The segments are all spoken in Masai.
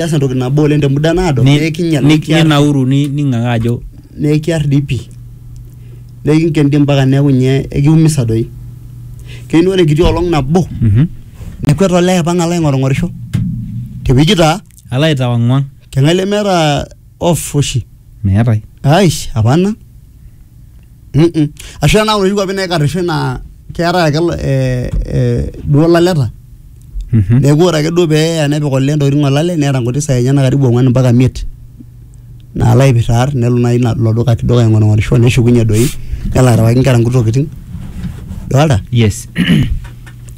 keas entoki nabo oleng te muda naado Ni- nekinyal ni- nekiar ninauru ni- ning'ang'aa ajo nekiar dii pii nekinken dii mpaka neeku nye ekiumisa doi keyieu naa ore enkiti olong nabo mhm, nekwet olee aipang alo aing'orung'orisho tewueji taa alo aitawang'wang keng'ae lemeeta off oshi meetae aish apana ashu tenaa inoshi kuapi naikarrisho naa keetae ake eh, eh, duo ilaleta Mhm. neeku ore ake duo pee eya nepik olee intokitin olale neeta nkuti saai enyenak karibu ong'wan mpaka imiet naalo aipirr aar nelo naaji ina- ilo duka kidogo aing'orng'orisho neshukunye doi nelo arewaki inkera nkuti tokitin dolta yes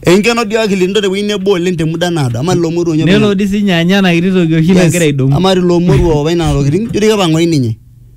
enkeno dio akili nito tewueji nebo oleng te muda naado ama lelo moruo nelo dii sinye anya ena kiti toki oshi nagira aidong'u ama lelo moruo apa ina tokitin jio doi kepang'oi ninye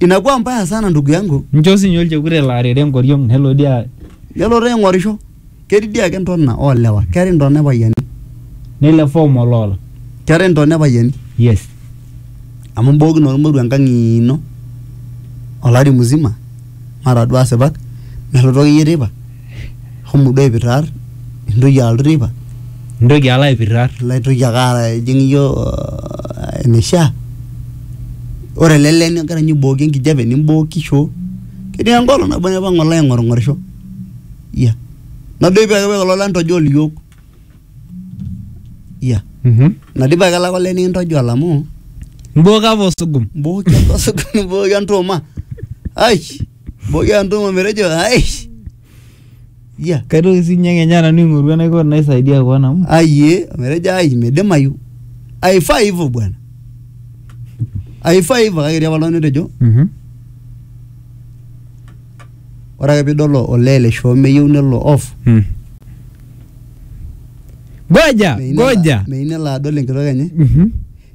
inakuwa mbaya sana ndugu yangu nchoo sinye olchekut elo arere enkoriong nelo dii a- nelotu aing'orisho ketii dii ake ntona oolewa keetae ntona epayiani nelo efom oloola keetae ntona epayiani yes amu imbookino ormoruo enkang ino olari mzima mara duo asipak melotu akeyie teipa shomo duo aipirrar intoki alotu teipa intoki alo aipirrar ilo aitoki ake ara ijing iyie uh, eneishaa ore ele lee nigira ninye aibooki enkijape nimbooki shoo ketii enkolong nabo naipang alo aing'orng'orisho iya nadoipi ake paa olola ntojol iyiok iya Mhm. nadipa ake lake olee nikintojol amu imbooki apa osugum mbooki apa osugum nimbooki entuuma ai Boyia ntumo metejo aish. Yia. Kaitoki sii ninye kenya nanu aing'oru enaiko naisaidia koon amu Aiye metejo ai midimayu. Aifaa hivyo bwana. Aifaa hivyo kake etii apa oltung'ani otejo Mhm. ore ake piidol olee le shoo meyieu nelo off. Mm. Goja, meyieu nelo- goja. Meyieu nelo adol enkitok enye. Mhm.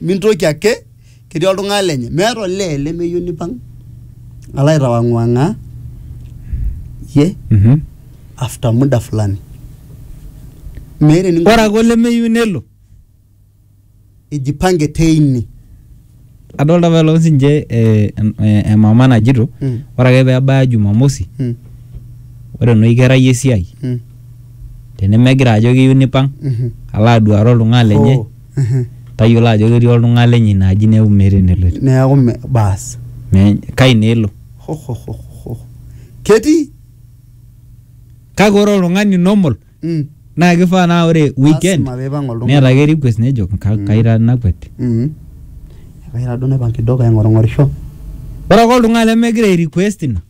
Mintoki ake, ketii oltung'ani lenye. Meeta olee lemeyieu nipang alo aitawang'wang'aa iyie Mhm. after muda fulani. Meeta eninko Ore ake olemeyieu nelo. ijipange teine. Adolta apa elong sinche eh, em- eh, emama najito Mm. ore ake pebaya jumamosi Mm, ore enoshi kerai esiai mm, tenemegira ajo keyieu nipang mhm. alo aduare oltung'ani lenye Oh. Mhm. tayiolo ajo ketii oltung'ani lenye ina aji neeku meeta eneloito neeku me- baas Me- kai naa elo Hohohoho. ketii kake ore oltung'ani normal Mm, naa kifaa naa ore weekend lasima peipang oltung'ani. neeta ake request nejo "Ka- Mm. kaira nakwet Mm. Ekaira duo naipang kidogo aing'orung'orisho ore ake oltung'ani lemegira ai request ina